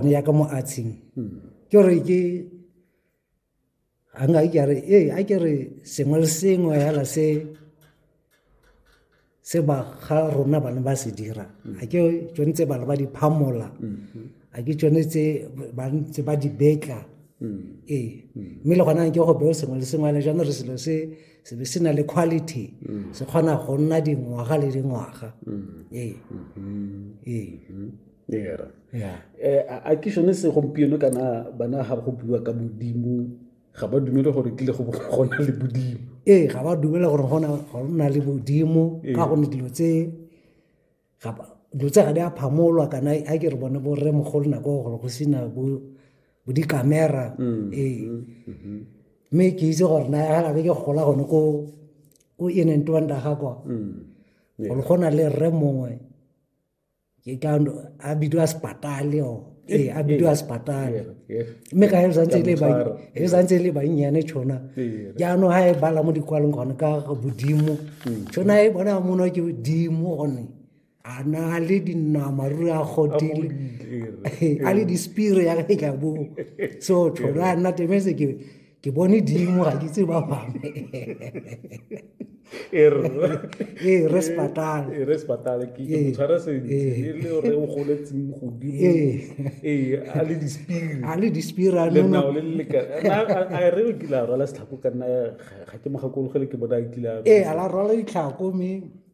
ya ka mo atsheng ke gore ke a nka ke re ee a ke re sengwe le sengwe fela se se ba ga rona bana ba se dira a ke tsone tse bana ba di phamola a ke tsone tse ba ntse ba di betla ee mme le gona ke go beo sengwe le sengwe le jalo re selo se se be se na le quality se kgona go nna dingwaga le dingwaga ee ee eh, a ke sone se gompieno kana bana ga go bua ka modimo ga ba dumele gore kile go gona le modimo ee ga ba dumele gore go na le modimo ee. ka gonne dilo tse dilo tse ga di a phamolwa kana a ke re bone bo rre mogolo nako gore go sena bo dikamera mm, ee mm, mm-hmm. mme ke itse gore na ga gabe ke gola gone ko ko inentwanda ga kwa mm, gore go na le rre mongwe ke ka a bidiwa sepatale o ee a bidiwa sepatale mme ka e santse e le bannyane tšhona jaanong ga e bala mo dikwalong gone ka bodimo tšhona e bona mono ke bodimo gone a na le dinama ruri a godile a le dispire ya ka e ka boo so tšhona a nna temese ke ke bone dimo ga ke tse ba bangwe ee re sepatale ee re sepatale ke ee. motshware sentle ee. le re o goletseng godimo ee a le dispiri a le dispiri a nna le le ka a re o kile a rwala setlhako ka nna ga ke mogakologele ke bona a kile a ee a la rwala ditlhako mme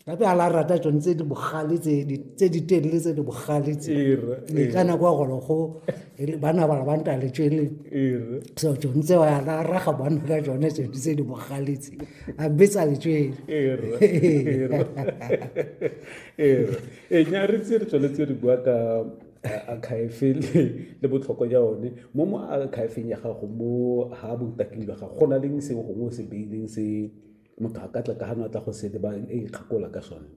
gape a la rata tsone tse di bogale tse di telele tse di bogale tse ka nako ya gore go bana bala ba ntale tswele so tsone tseo ya la raga bana ka tsone tsone tse di bogale tse a betsa le tswele ee nya re tse re tsweletse re bua ka akhaefe le botlhokwa ja one mo mo akhaefeng ya gago mo ha botaking jwa gago go na leng sengwe gongwe o se beileng se motho a ka tla ka gano a tla go sete ba e ikgakola ka sone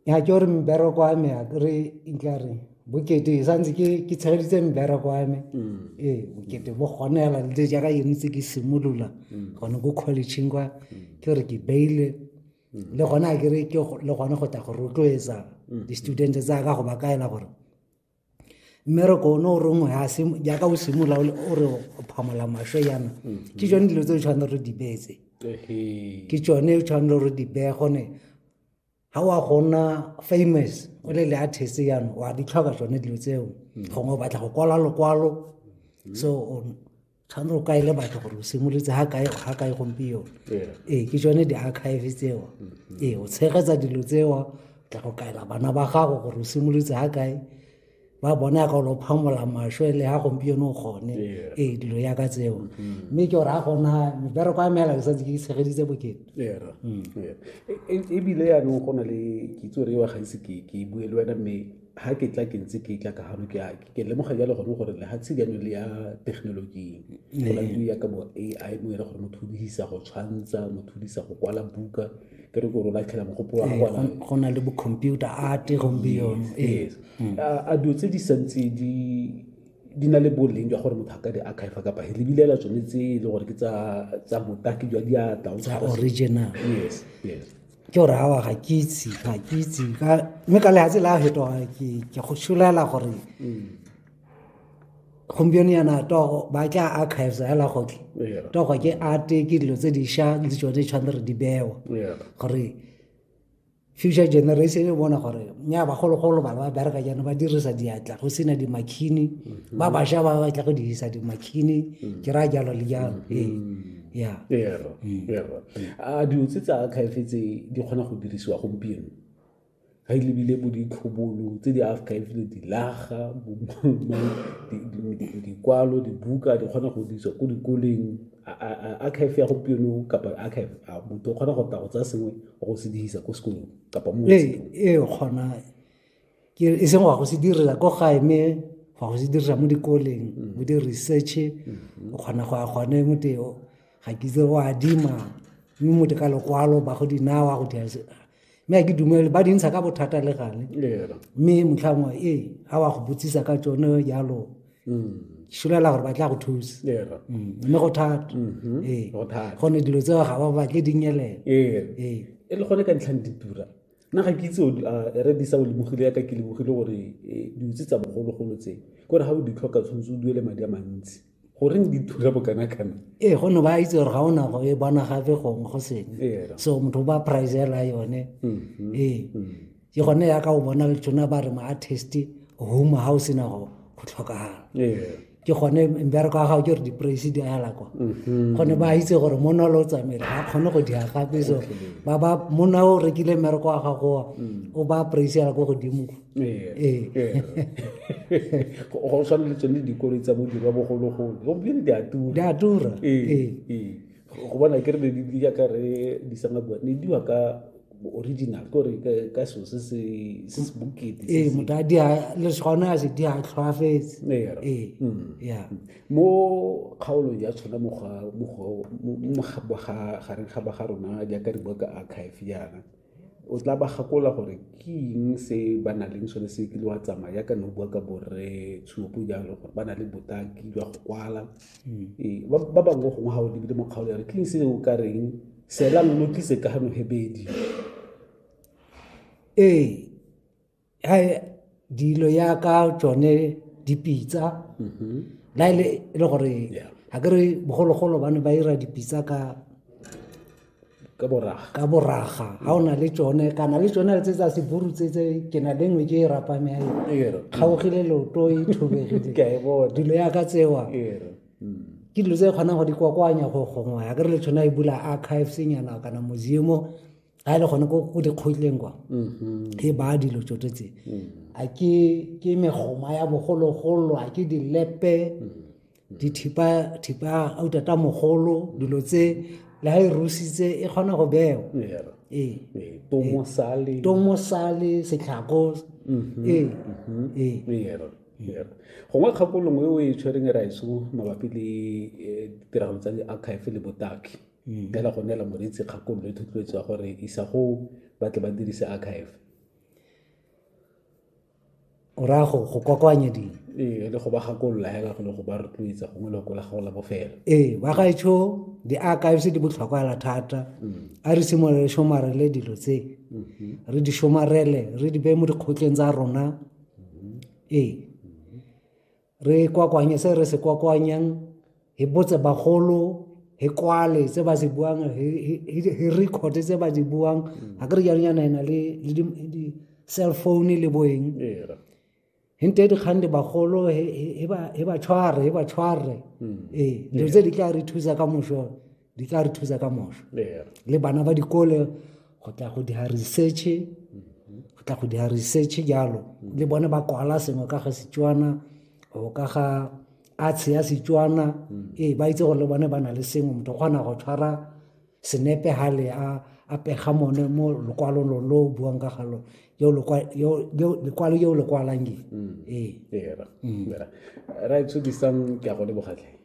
ya ke gore mbereko wa me a kere nkla re bokete e santse ke ke tshegeditse mbereko wa me mm. ee bokete bo gone fela le jaaka yone tse ke simolola mm. gone ko collegeng kwa mm. ke gore ke beile le gone a kere ke le gone go tla go rotloetsa di-student tsa ka go ba kaela gore mmereko one o rongwe jaaka o simolola o re o phamola maswe yana mm-hmm. ke tsone dilo tse o tshwanele re di beetse ke tsone o tshwanele re di beye gone ga wa gona famous o le le artist yana wa di tlhoka tsone dilo tseo mm-hmm. gongwe o batla go kwala lokwalo mm-hmm. so tshwanetse o kaele batho gore o simolotse ga kae ga kae gompieno ee ke tsone di-archive tseo mm-hmm. ee o tshegetsa dilo tseo tla go kaela bana ba gago gore o simolotse ga kae ba bone ya ka lo phamola maswe le ga gompieno o kgone ee dilo ya ka tseo mm-hmm. mme ke gore ga gona mebereko ya meela ke santse ke itshegeditse bokete mm. e, e, ebile yanong go na le kitso re wa gaise ke bue le wena mme ha ke tla ke ntse ke tla ka hano ke ke lemoga jalo gone gore lehatshe jaanong le ya thekenoloji go la ya ka bo ai mo ere gore motho o dirisa go tshwantsha motho o dirisa go kwala buka ke re gore o latlhela mogopolo wa gona go na le bo computer art gompieno yes mm. a dilo tse di santse di di na le boleng jwa gore motho a ka di archive kapa he lebilela tsone tse e le gore ke tsa botaki jwa diatla original yes yes ke gore awa ga ke itse ga ke itse mme ka lehatshe la fetoga ke go šolela gore mm. gompieno yana togo ba tla archives ya lagoke togo ke arte ke dilo tse diša le tsone di tshwanetse re di bewa gore future generation e bona gore nya bagologolo bana ba bereka jaana ba dirisa diatla go sena dimakhini mm-hmm. ba bašwa ba batla go dirisa dimakhini mm. ke raya jalo le jalo mm-hmm. ee mm. a dilo tse tsa archive tse di kgona go dirisiwa gompieno ga e lebile bo ditlhobolo tse di archive le dilaga dikwalo dibuka di kgona go dirisiwa ko dikoleng archive ya gompieno kapa archive a motho o kgona go tla go tsaya sengwe go se dirisa ko sekolong kapa mo ee, ee, kgona ke e seng wa go se direla ko gae mme wa go se dirisa mo dikoleng mo mm. di-research mm-hmm. o kgona go ya gone mote ga ke itse o adima mme mote ka lokwalo ba go dinawa go dira mme ke dumele ba dintsha ka bothata le gale mme motlhangwe ee ga wa go botsisa ka tsone jalo mm. šolela gore ba tla go thusa mm. mme go thata mm-hmm. ee gone dilo tseo ga ba batle dinyelela ee. ee. e le gone ka ntlhang ditura nna ga ke itse re disa o lebogile yaka ke lebogile gore eh, diutse tsa bogologolo tse kore ga o di tlhoka tshwanetse o duele madi a mantsi goreng di thula bokana kana ee go ne ba itse gore ga o na go e bona gape gongwe go sengwe ee, so motho o ba pricela yone mm-hmm. ee mm-hmm. ke gone yaka o bona tsona ba re mo artist home ga o sena go tlhokagala ee. ke gone mbereko wa gago ke gore di-praise di ala kwa mm-hmm. gone ba itse gore monna o le o tsamaele ga kgone go dia gape so ba ba monna o rekile mmereko wa gagowa mm. o ba praise ala ko godimo ee. Ee. go tshwaneletsone dikolo tsa bodirwa bogologolo gompieno di a tura di a tura ee, go bona ke re di ya ka re di sanga bua ne diwa ka original ko re ka so se se se se bukete ee motho a dia le gona a se di a tlhoafetse ee mm. ya mm. mo kgaolong ya tshwana mo ga mo ga mo ga ga ga ga rona jaaka re bua ka archive yana o tla ba gakola gore ke eng se ba na leng sone se kile wa tsamaya yaka ne o bua ka borre tshupo jalo gore ba na le botaki jwa go kwala hmm. ee, ba bangwe gongwe ga o lebile mo kgaolo ya re ke eng se o ka reng seelang lo tlise ka gano hebedi ee dilo ya ka tsone dipitsa mm-hmm. la e le e le gore ga ke re bogologolo ba ne ba ira dipitsa ka ka boraga ka boraga ga o na le tsone kana le tsone tse tsa seburu tse tse ke na le nngwe ke e rapame ya kgaogile loto e thobegile dilo ya ka tsewa mm. ke dilo tse kgonang go di kwakwanya go gongwe ya ke re le tshwana e bula archives nyana kana museum a le gone ko go dikgotleng kwa mm-hmm. e baya dilo tso tse mm. a ke ke megoma ya bogologolo a ke dilepe mm. mm. dithipa thipa a utata mogolo dilo tse le ha e rusitse e kgona go bewa ee tomosale ee. tomosale setlhako mm-hmm. ee mm-hmm. ee gongwe kgakolongwe o e tshwereng e ra eso mabapi le eh, ditiragalo tsa di-archive le botaki mm. fela go neela moreetsi kgakololo le thotloetso ya gore isa go ba tle ba dirise archive o raya go go kokoanya dilo ee le go ba gakolola hela go le go ba rotloetsa gongwe le go la gago la bofelo ee ba gaetsho di-archives di botlhokwa hela thata mm. a re simolole somarele dilo tse mm-hmm. re di somarele re di beye mo dikgotleng tsa rona mm-hmm. ee re kwakwanye se re se kwakwanyang hi botse bagolo hi kwale tse ba se buang hi record tse ba di buang ha ke re jalo yana ena le di cell phone le boeng hi nte dikgang di bagolo hi ba tshware hi ba tshware ee dilo tse di tla re thusa ka moso di tla re thusa ka moso le bana ba dikole go tla go dira research go tla go dira research jalo le bone ba kwala sengwe ka ga setswana go ka ga arts ya setswana ee ba itse gore le bone ba na le sengwe motho o kgona go tshwara senepe gale a a pega mone mo lokwalong lo lo buang ka galo yo lekwalo yo lekwalang ee right so disang ke a go lebogatlhe